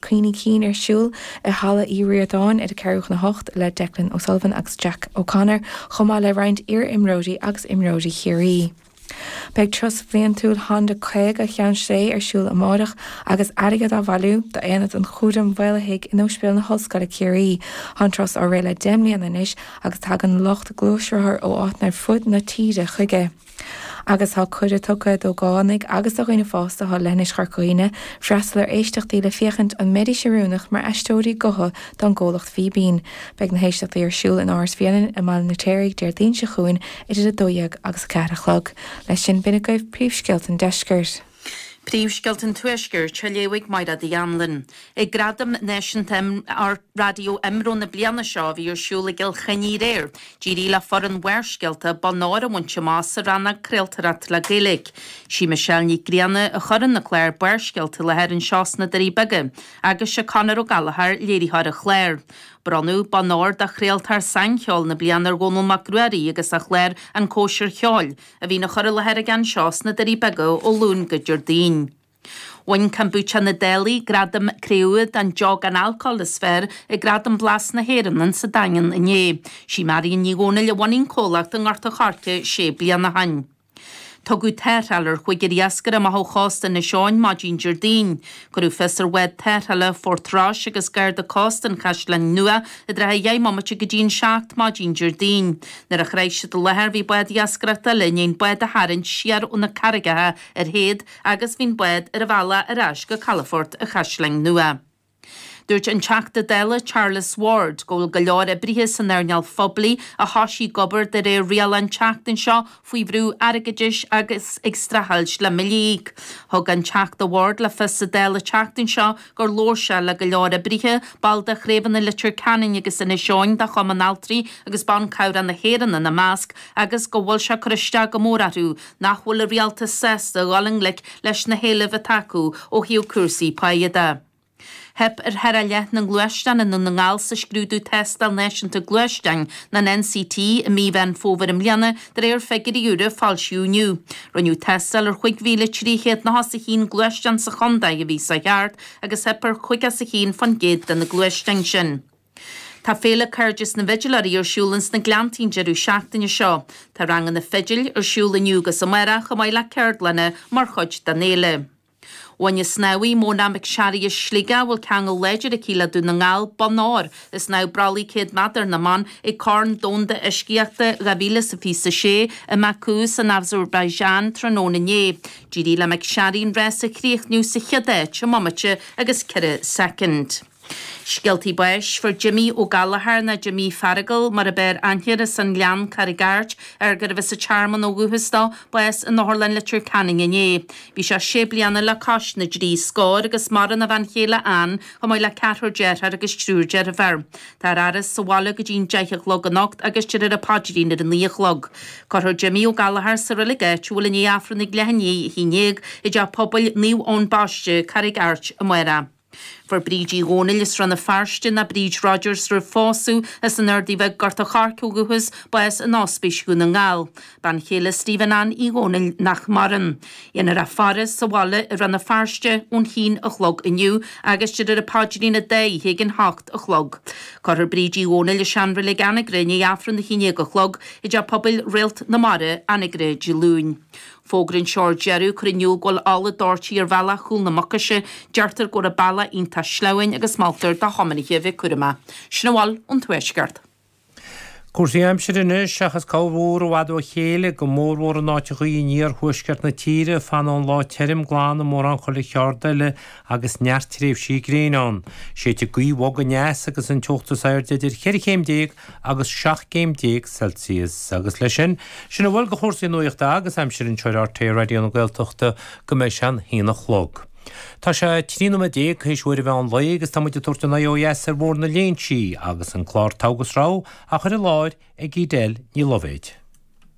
Cuimhní Cinn ar siúl i Halla Uí Ríordáin ar a ceathrú chun a hocht le Declan O'Sullivan agus Jack O'Connor chomh maith le roinnt iar-imreoirí agus imreoirí Chiarraí. Beidh Turas Bhliantúil Honda 50 Cheann Sléibhe ar siúl amárach agus airgead á bhailiú d'Aonad an Chúraim Mhaolaithigh in Ospidéal na hOllscoile Ciarraí. Tá an turas á rith le deich mbliana anois agus tagann lucht gluaisrothar ó áiteanna ar fud na tíre chuige. agus tá cuireadh tugtha d'ógánaigh agus do dhaoine fásta ó leithinis Chorca Dhuibhne freastal ar éisteachtaí le féachaint an mbeidís oiriúnach mar aisteoirí gutha don gcomhlacht Fíbín. Beidh na héisteachtaí ar siúl in Áras Bhréanainn i mBaile an Fheirtéaraigh Déardaoin seo chugainn idir 12 agus 4 a chlog. Leis sin, b'in agaibh príomhscéalta an deiscirt. Príomhscéalta an Tuaiscirt á léamh ag Mairéad Uí Anluain ag Gradaim Náisiúnta Raidió IMRO na bliana seo a bhí ar siúl i gCill Chainnigh aréir. D'éirigh le foireann Bharrscéalta bonn óir a bhaint amach sa rannóg 'Craoltóireacht le Gaeilge'. Sí Michelle Nic Grianna a chuireann an clár Barrscéalta i láthair anseo sna Doirí Beaga agus sé Conor Ó Gallachóir léiritheoir an chláir. Bronnadh bonn óir do chraoltóir saincheoil na bliana ar Dhónall Mac Ruairí agus a chlár 'An Cóisir Cheoil'. a bhíonn á chur i láthair aige anseo sna Doirí Beaga ó Luan go Déardaoin. Bhain Kombucha na Dálaigh gradam cré-umha don deoch gan alcól is fearr ag Gradaim Blas na hÉireann insa Daingean inné. Sí Marianne Ní Dhomhnaill a bhunaigh an comhlacht i nGort a Choirce sé bliana ó shin. Tugadh tarrtháil ar chúigear iascaire amach ó chósta Inis Eoghain maidin Déardaoin. Cuireadh fios ar bhád tarrthála Phort Rois agus garda cósta an Chaisleáin Nua i dtrátha a dheich mbomaite go dtí an seacht maidin Déardaoin. Nuair a shroich siad an láthair bhí bád iascaireachta eile i ndiaidh an bád a tharraingt siar ó na carraigeacha ar théad agus bhí an bád ar a bhealach ar ais go calafort an Chaisleáin Nua. Dúirt an Teachta Dála Charles Ward go bhfuil go leor oibrithe san earnáil phoiblí a thoisigh ag obair de réir rialach an tseachtain seo faoi bhrú airgeadais agus ag streachailt le billí. Thug an Teachta Ward le fios sa Dáil an tseachtain seo gur labhair sé le go leor oibrithe, baill de chraobhanna Leitir Ceanainn agus Inis Eoghain de Chumann Altraí agus Ban Cabhrach na hÉireann ina measc, agus go bhfuil sé ag cur isteach go mór orthu nach bhfuil an rialtas sásta a dhul i ngleic leis na héilimh atá acu ó thaobh cúrsaí páighe de. Theip ar thar a leath na ngluaisteán i nDún na nGall sa scrúdú Tástáil Náisiúnta Gluaisteáin, nó an NCT, i mí Mheán Fómhair i mbliana, de réir figiúirí úra a foilsíodh inniu. Rinneadh tástáil ar chúig mhíle trí chéad nócha is a haon gluaisteán sa chontae an mhí seo thart agus theip ar chaoga is a haon fán gcéad de na gluaisteáin sin. Tá Féile Cairdeas na bhFidiléirí ar siúl ins na Gleanntaí an deireadh seachtaine seo. Tá ranganna fidil ar siúl inniu agus amárach, chomh maith le ceardlanna mar chuid den fhéile. Bhain an snámhaí Mona McSharry as Sligeach, a bhfuil ceangal láidir aici le Dún na nGall, bonn óir i snámh bralaigh 100 meadar na mban ag Corn Domhanda Uiscíochta 2026 i mBaku san Azerbaijan tráthnóna inné. D'éirigh le McSharry an rás a chríochnú sa chéad áit i mbomaite agus ceithre soicind. Scéaltaí báis. Fuair Jimí Ó Gallchóir nó Jimí Fheargail mar ab fhearr aithne air as an Ghleann, Carraig Airt, ar gurbh as an Tearmann ó dhúchas dó, bás in Otharlann Leitir Ceanainn inné. Bhí sé sé bliana le cois na dtrí scór agus maireann a bhean chéile Anne, chomh maith le ceathrar dearthár agus triúr deirféar. Táthar á fhaire sa bhaile go dtí'n deich a chlog anocht agus déarfar an paidrín ar a naoi a chlog. Cuirfear Jimí Ó Gallchóir sa reilig áitiúil i ndiaidh Aifreann ag leath i ndiaidh a haon déag i dTeach Pobail Naomh Eoin Baiste, Carraig Airt, amárach Fuair Bríd Uí Dhomhnaill as Rann na Feirste, nó Bríd Rodgers roimh phósadh, as an Ardaidh Bheag, Gort an Choirce ó dhúchas, bás in Ospís Dhún na nGall, bean chéile Stephen Anne Uí Dhomhnaill nach maireann. Dhéanfar a faire sa bhaile i Rann na Feirste ón chionn a chlog inniu agus déarfar an paidrín an dá oíche ag an hocht a chlog. Cuirfear Bríd Uí Dhomhnaill i seanreilig Anagaire i ndiaidh Aifreann a haon déag a chlog i dTeach Pobail Réalt na Mara, Anagaire, Dé Luain. Fógra anseo ar deireadh ag cur in iúl go bhfuil ola doirte ar bhealach Chúl na Mucaise, deirtear go raibh an bealach iontach sleamhain agus moltar do thiomanaithe a bheith cúramach. Sin a bhfuil ón Tuaisceart. Cúrsaí aimsire anois, seachas corrmhúr i bhfad ó chéile, go mórmhór in áiteachaí in iarthuaisceart na tíre, fanfaidh an lá tirim glan i mórán chuile cheard eile agus neart tréimhsí gréine ann. Séidfidh gaoth bhog aneas agus an teocht is airde idir cheithre chéim déag agus 17 céim Celsius. Agus leis sin, sin a bhfuil de chúrsaí nuachta agus aimsire anseo ar RTÉ Raidió na Gaeltachta go mbeidh sé an h-aon a chlog. Tá sé 13 nóiméad théis uair an mheán lae agus tá muid ag tabhairt ár n-aghaidh ó dheas ar Bhóthar na Léinsí agus an clár Togha agus Rogha á chur i láthair ag Edel Ní Loibhéad.